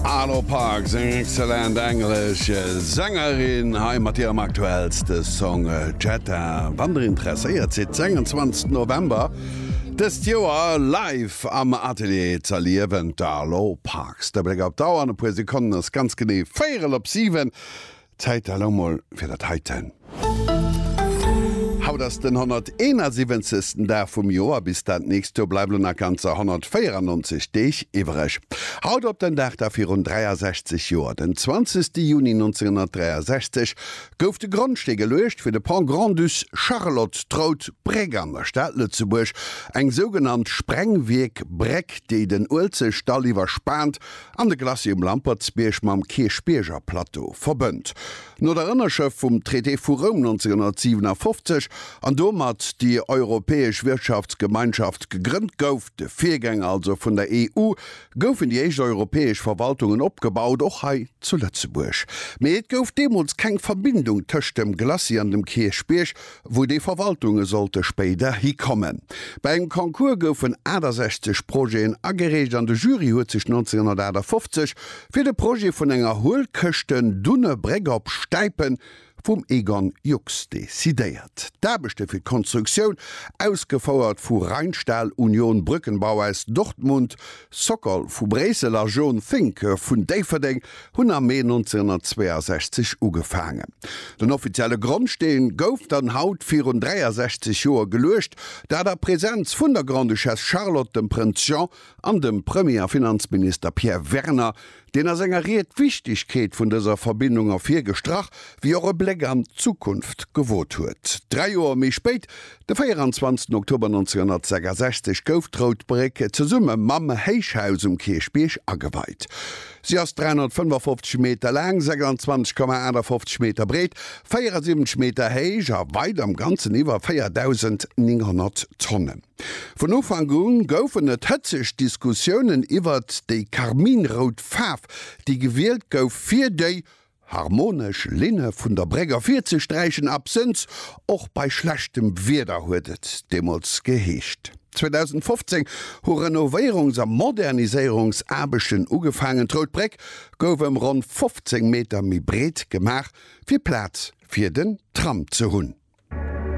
Arlo Parks, eng excellent englesch Sängerin, hei mat hirem aktuellste Song Jetta. Wann der interesséiert sidd, den 21 November dëst Joer live am Atelier ze erliewen, d'Arlo Parks. De Bléck op d'Auer, an e puer Sekonnen ass ganz genee véierel op siwen. Zäit da lo mol fir dat heiten. Haut ass den 171. Dag vum Joer, bis dat nächst Joer bleiwen lo nach ganzer 194 Deeg iwwereg. Haut op den Dag da virun 63 Joer, den 20. Juni 1963, gouf de Grondstee geluecht fir de Pont Grand-Duc Charlotte, d'Rout Bréck an der Stad Lëtzebuerg, eng sougenannt Sprengwierk-Bréck, déi den Uelzechtdall iwwerspaant an de Glacis um Lampertsbierg mam Kierchbierger Plateau verbënnt. No der Ënnerschëft vum Traité vu Roum 1957, an domat déi Europäesch Wirtschaftsgemeinschaft gegrënnt gouf, de Virgänger also vun der EU, goufen déi éischt europäesch Verwaltungen opgebaut, och hei zu Lëtzebuerg. Mee et gouf deemools keng Verbindung tëscht dem Glacis an dem Kierchbierg, wou déi Verwaltunge sollte spéider hikommen. Bei engem Concours goufen 68 Projeten agereecht an de Jury huet sech 1958 fir de Projet vun enger Huelkëschten dunne Bréck op Stäipen vum Egon Jux decidéiert. D'Aarbechte fir d'Konstruktioun, ausgefouert vu Rheinstahl Union Brückenbau aus Dortmund, Sokol vu Bréissel a Jean Finke vun Déifferdeng hunn am Mee 1962 ugefaangen. Den offizielle Grondsteen gouf dann haut virun 63 Joer geluecht, dat a Präsenz vun der Grande-Duchesse Charlotte, dem Prënz Jean an dem Premier a Finanzminister Pierre Werner, Deen a senger Ried d'Wichtigkeet vun dëser Verbindung ervir gestrach, wéi och e Bléck an d'Zukunft gewot huet. Dräi Joer méi spéit, de 24 Oktober 1966, gouf d'Rout Bréck zesumme mam Héichhaus um Kierchbierg ageweit. Si ass 355 Meter laang, 26,58 Meter breet, 74 Meter héich a weit am Ganzen iwwer 4.900 Tonne. Vun Ufank u goufen et hëtzeg Diskussiounen iwwert déi karminrout Faarf, déi gewielt gouf, fir déi harmonesch Linne vun der Bréck ervirzesträichen, absënns och bei schlechtem Wieder, huet et deemools geheescht. 2015 hu Renovéierungs a Moderniséierungsaarbechten ugefaangen, d'Rout Bréck gouf ëm ronn 15 Meter méi breet gemaach, fir Plaz fir den Tram ze hunn.